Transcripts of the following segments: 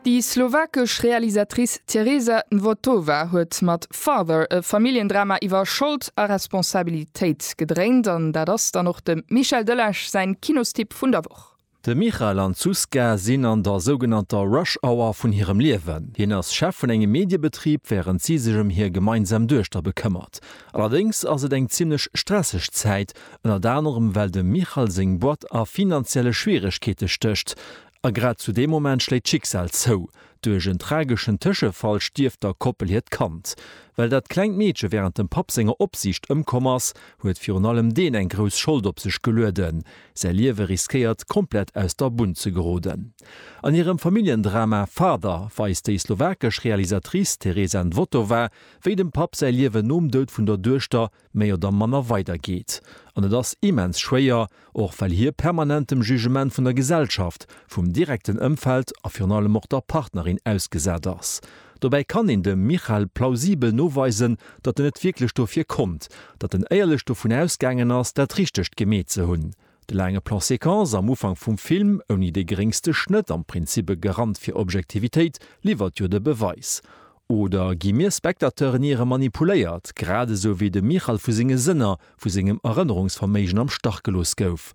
Déi slowakesch Realisatrice Tereza Nvotová huet mat Father e Familljendrama iwwer Schold a Responsabilitéit gedréint an dat ass dann och dem Michel Delage säin Kinostipp vun der Woch. De Michal an d'Zuzka sinn an der sougenannter Rush Hour vun hirem Liewen. Hien ass Chef vun engem Mediebetrib, wärend si sech ëm hir gemeinsam Duechter bekëmmert. Allerdéngs ass et eng zimmlech stresseg Zäit, ënnert anerem well dem Michal seng Boîte a finanzielle Schwieregkeete stécht. A grad zu deem Moment schléit d'Schicksal zou. Duerch en trageschen Tëschefall stierft der Koppel hiert Kand. Well dat klengt Meedche wärend dem Papp senger Opsiicht ëmkomm ass, huet virun allem deen eng grouss Schold op sech gelueden. Säi Liewe riskéiert, komplett aus der Bunn ze geroden. An hirem Familljendrama Father weist déi slowakesch Realisatrice Tereza Nvotová, wéi dem Papp säi Liewen nom Doud vun der Duechter méi oder manner weider geet. An et ass immens schwéier, och well hie permanent dem Jugement vun der Gesellschaft, vum direkten Ëmfeld a virun allem och der Partnerin ausgesat ass. Dobäi kann een dem Michal plausibel noweisen, datt en net wierklech dofir konnt, datt en éierlech dovun ausgaangen ass, dat Richtegt gemeet ze hunn. De laange Plan séquence am Ufank vum Film, ouni dee geréngste Schnëtt, am Prinzip e Garant fir Objektivitéit, liwwert jo de Beweis. Oder gi mir Spectateuren iere manipuléiert, grad esou wéi de Michal vu senge Sënner, vu sengem Erënnerungsverméigen am Stach gelooss gouf?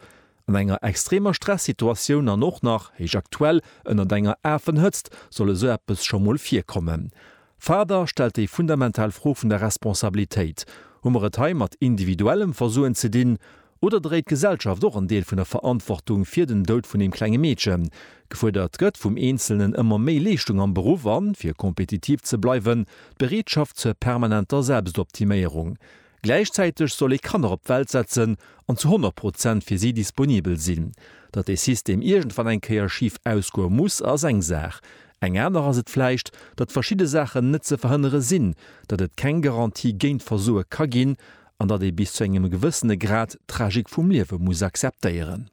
An enger extremer Stressituatioun an och nach, héich aktuell, ënnert enger Afenhëtzt soll esou eppes scho mol virkommen? Faber stellt déi fundamental Fro vun der Responsabilitéit. Hu mer et hei mat individuellem Versoen ze dinn? Oder dréit d'Gesellschaft och en Deel vun der Verantwortung fir den Doud vun deem klenge Meedchen? Gefuerdert gëtt vum Eenzelnen ëmmer méi Leeschtung am Beruff an, fir kompetitiv ze bleiwen, d'Bereetschaft zur permanenter Selbstoptiméierung. Gläichzäiteg soll ee Kanner op d'Welt setzen an zu 100 Prozent fir si disponibel sinn. Datt dee System iergendwann eng Kéier schif ausgoe muss, ass eng Saach. Eng aner ass et vläicht, datt verschidde Saachen net ze verhënnere sinn, datt et keng Garantie géint Versoe ka ginn an datt ee bis zu engem gewëssene Grad d'Tragik vum Liewe muss akzeptéieren.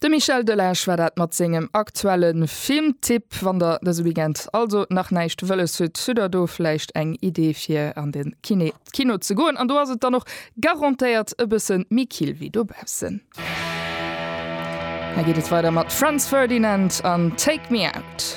De Michel Delage war dat mat sengem aktuelle Filmtipp. Wann der dëse Weekend also nach näischt wëlles hutt, hutt der do vläicht eng Idee fir an de Kiné, d'Kino, ze goen. An do ass et dann och garantéiert e bësse méi kill wéi dobaussen. Hei geet et weider mat Franz Ferdinand an Take Me Out.